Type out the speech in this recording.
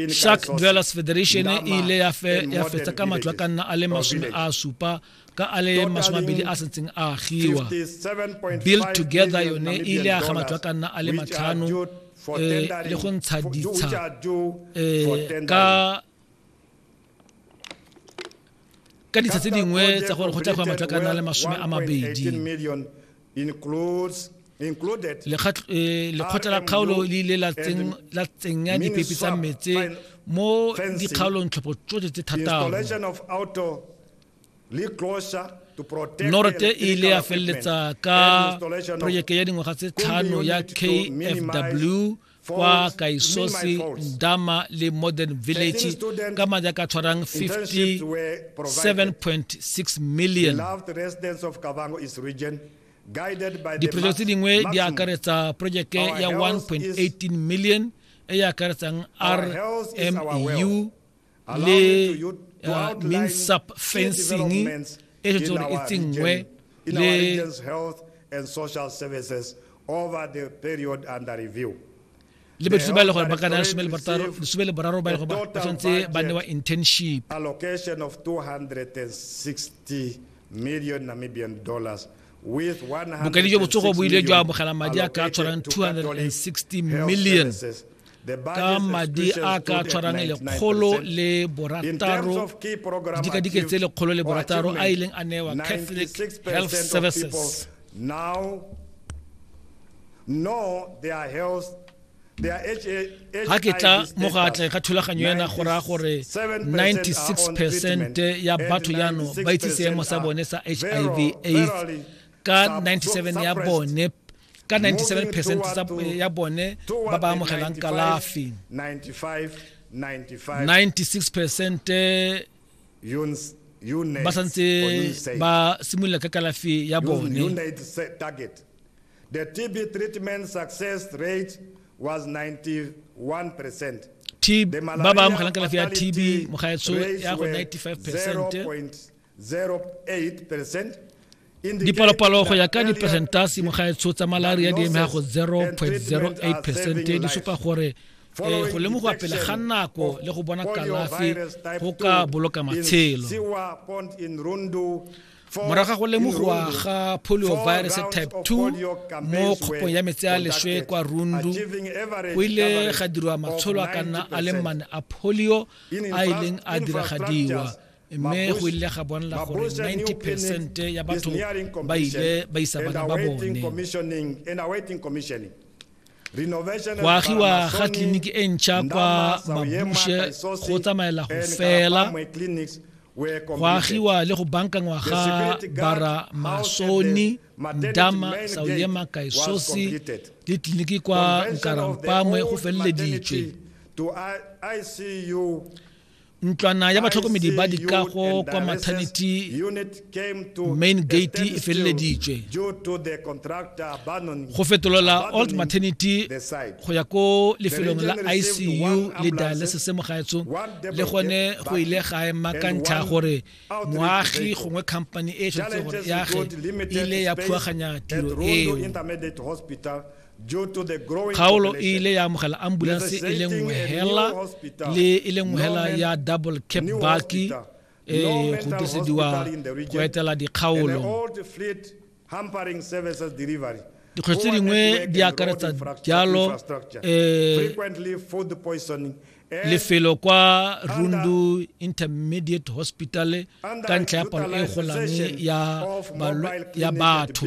shark dwellers federation e ile ya fetsa ka matlo a ka nna a le masome a supa ka a le masome abedi a sentseng a agiwa build together yone e ile ya ga matlo a ka nna a le matlhano eh, le go ntsha ditsha eh, ka ka ditsha tse dingwe tsa gore go tla go matlo ka nna le masome a mabedi eh, lekgotla la kgaolo le ile la tsenya dipepi tsa metse mo dikgaolong tlhopho tsotlhe tse thataro norete e ile ya feleletsa ka projeke ya dingwaga tse tlhano ya kfw kwa kaisosi ndama le modern village ka madi a ka tshwarang 57.6 million diprojeke tse dingwe di akaretsa projeke ya 1.18 million e e akaretsang rmu le uh, minsap fencing e re tsone e tsenngwe le and social services over the period under review le bathusi ba e le gore ba ka naya lesome le boraro ba e le gore ba tshwanetse ba newa internship allocation of 260 million namibian dollars bokedi jo botsogo bo ile jwa amogela madi a ka tshwarang 260 million ka madi a ka tshwarang lekgolo le borataro dikadike tse lekgolo le borataro a ileng a newa catholic health services now know their health ga ke tla mo go atleng ga thulaganyo ena go raya gore 96 percent ya batho yano ba itse seemo sa bone sa hiv aids ka 97 ya bone ka 97 percent eh, ya bone ba ba amogelang kalafi 96 percent eh, ba santse ba simolola ka kalafi ya bone The TB treatment success rate was 91%. ba ba amogelang kalafi ya tb mogaetso ya go 95 percent Dipalopalo go ya ka diperesentase mo gaetsho tsa malaria di eme go 0.08 percent di supa gore e go lemogiwa pele ga nako le go bona kalafi go ka boloka matshelo morago ga go lemogiwa ga polio virus type 2 mo kgopong ya metsi a leswe kwa rundu go ile ga dirwa matsholo a ka nna a le mane a polio a ileng a diragadiwa mme go ile ga bonela gore 90 percent ya batho ba ile ba isa bana ba bone go agiwa ga tleliniki e ntšha kwa mabushe go tsamaela go fela go agiwa le go bankangwa ga bara masoni ndama sauyema kaisosi le tleliniki kwa nkarampamwe go feleleditswe ntlwana ya batlhokomedi ba dikago kwa maternity main gate e feleleditswe go fetolola old maternity go ya ko lefelong la icu le dialysis mo gaetsho le gone go ile ga ema ka ntlha gore moagi gongwe company e tshwanetse gore yage ile ya phuaganya tiro eo kgaolo e ile ya amogela ambulance e le nngwe hela le e le nngwe hela ya double cap baki e go disediwa go etela dikgaolo dikgwetlho tse dingwe di akaretsa jalo um lefelo kwa rundu intermediate hospital ka ntlha ya palo e golang ya batho